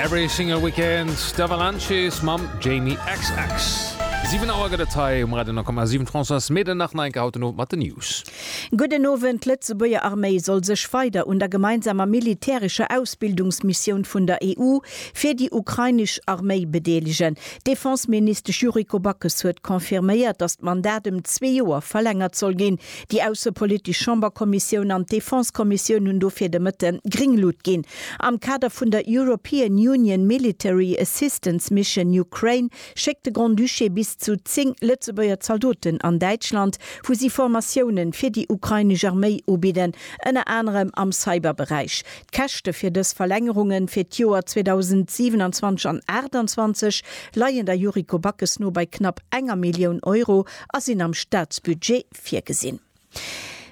Every single weekend d'Avalanches mam Jamie xx. 7 Auer gëtt et hei um Radio 10,7. D'Françoise Meden nach en Einke haut den Owend mat den News. Gudden Owend, D'Lëtzebuerger Arméi soll sech weider un der gemeinsamer militärescher Ausbildungsmissioun vun der EU fir déi ukrainesch Arméi bedeelegen. D'Defenseministesch Yuriko Backes huet confirméiert, datt d'Mandat ëm zwee Joer verlängert soll ginn. Déi aussepolitisch Chamberkommissioun an d'Defensekommissioun hunn dofir de Mëtte gring Lut ginn. Am Kader vun der European Union Military Assistance Mission Ukraine schéckt de Grand-Duché bis zu 10 Lëtzebuerger Zaldoten an Däitschland, wou si Formatiounen fir déi ukrainesch Arméi ubidden, ënner anerem am Cyberberäich. D'Käschte fir dës Verlängerunge fir d'Joer 2027 an 2028 leien der Yuriko Backes no bei knapp enger Millioun Euro a sinn am Staatsbudget virgesinn.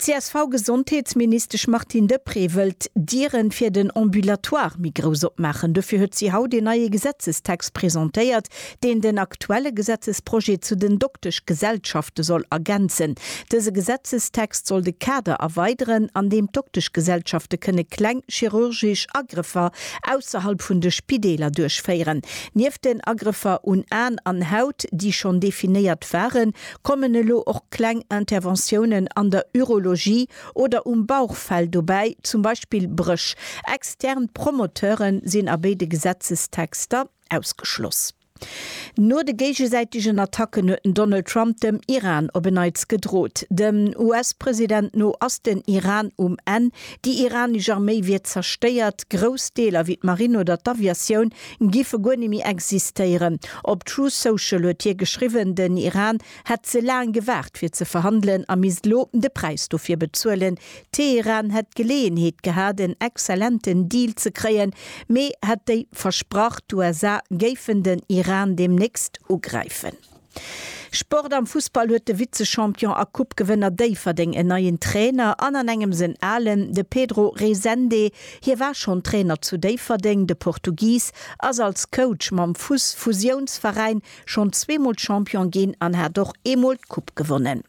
D'CSV-Gesondheetsministesch Martine Deprez wëllt d'Dieren fir den Ambulatoire méi grouss opmaachen. Dofir huet si haut een neie Gesetzestext presentéiert, deen den aktuelle Gesetzesprojet zu den Dokteschgesellschafte soll ergänzen. Dëse Gesetzestext soll de Kader erweideren, an deem d'Dokteschgesellschafte kënne kleng chirurgesch Agrëffer ausserhalb vun de Spideeler duerchféieren. Nieft den Agrëffer un Aen an Haut, déi schonn definéiert waren, kommen elo och kleng Interventiounen an der Urologie oder um Bauchfell dobäi, zum Beispill Bréch. Extern Promoteuren sinn a béide Gesetzestexter ausgeschloss. No de géigesäitegen Attacken huet den Donald Trump dem Iran op en Neits gedrot. Dem US-President no ass den Iran um Enn. Déi iranesch Arméi wier zerstéiert. Grouss Deeler wéi d'Marinn oder d'Aviatioun géife guer net méi existéieren. Op Truth Social huet hie geschriwwen, den Iran hätt ze laang gewaart fir ze verhandelen a misst elo de Präis dofir bezuelen, Teheran hätt d'Geleeënheet gehat en exzellenten Deal ze kréien, mee hätt déi versprach, d'USA géifen den Iran deemnächst ugräifen. Sport Am Fussball huet de Vize-Champion a Coupe-Gewënner Déifferdeng en neien Trainer an an engems en alen, de Pedro Resende. Hie war schonn Trainer zu Déifferdeng. De Portugis ass als Coach mam Fuss-Fusiounsveräin schonn zweemol Champion ginn an hat och eemol d'Coupe gewonnen.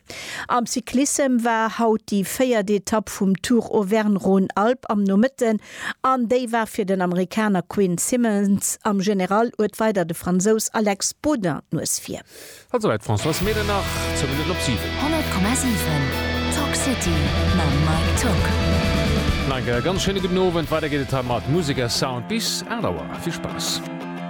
Am Cyclissem war haut déi véiert Etapp vum Tour Auvergne-Rhône-Alpes am Nomëtten an déi war fir den Amerikaner Quinn Simmons am General uert weider de Fransous Alex Baudin d'Nues vir. Haut souwäit Françoise Mehlen nach 10 Minutten op 7. 100,7 Talk City mam Mike Tock. Nach eng Kéier ganz schéine gudden Owend. Weider geet et hei mat Musek a Sound bis 8 Auer. Vill Spaass.